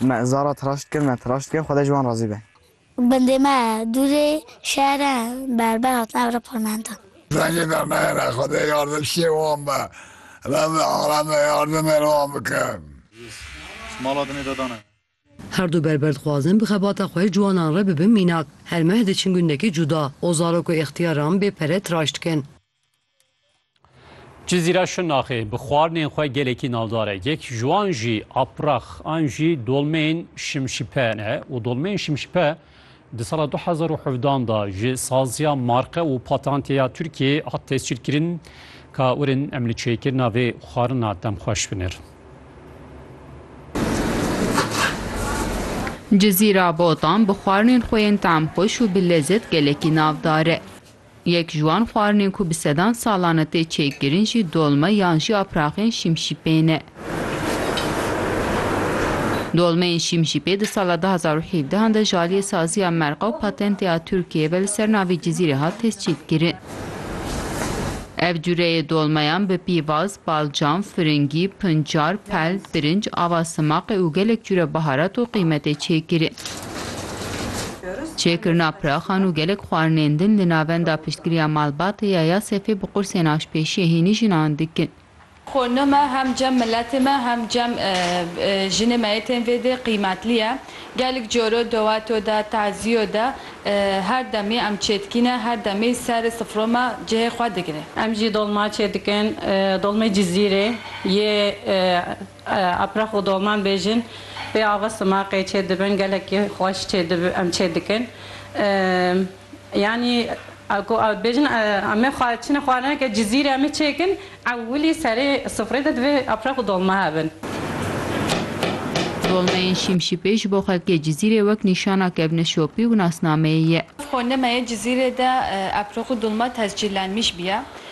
Me zara tiraşt kir, me tiraşt kir, Xwedê ji wan razî be. Bendê me dûrê şehre berber hatin evre parlamento. Dengê me mehre, Xwedê yardimşiyê wan be. Rebi aleme yardimê li wan bike. Her du berber dixwazin bi xebata xwe ciwanan re bibin mînak. Her meh diçin gundekî cuda û zarok û îxtiyaran bê pere tiraşt dikin. Cizîra Şirnaxê bi xwarinên xwe gelekî navdar e. Yek ji wan jî aprax an jî dolmeyên şimşipe ne û dolmeyên şimşipe di sala 2017 da ji saziya marqe û patanteya Tirkiyeyê hat tescîlkirin. Ka urin em li çêkirina vê xwarina dem xweş binir. Cizîra Botan bi xwarinên xwe yên tamxweş û bi lezet gelekî navdar e. Yek ji wan xwarinên ku bi sedan salan e tê çêkirin jî dolme yan jî apraxên şimşîpê ne. Dolmeyên şimşîpê di sala du hezar û hevdeh an de ji aliyê Saziya Merqa û Patentê a Tirkiyeyê ve li ser navê Cizîrê hat tescîlkirin. Ev cureyê dolmeyan bi pîvaz, balcam, firingî, pincar, pel, birinc, ava simaqê û gelek cure baharat û qîmetê çêkirin. Çêkirina piraxan û gelek xwarinên din li Navenda Piştgiriya Malbatê ya Yasefê bi qursên aşpêşiyê hînî jinan dikin. Xo ne me hem cem miletê me hem cem jinê me yê tên vêdê qîmetlî ye. Gelik coro doweto de, tazîyo de her demî em çêdikîne, her demî serê sifro me cihê xwe digirê. Em jî dolma çêdikin, dolmê Cizîrê yê. Apraq û doman bêjin pê ava simaqê çê dibin gelekî xweş çê dibin em çê dikin yanî ku bêjin em ê çinê xwarinê ke cizîrê em ê çê kin ewilî serê sifrê de divê apraq û dolma hebin. Dolmeyên şîmşîpê ji bo xelkê cizîrê wek nîşana kevne şopî û nasnameyê ye. Xwe nime ye cizîrê de apraq û dolma tescîllenmiş biya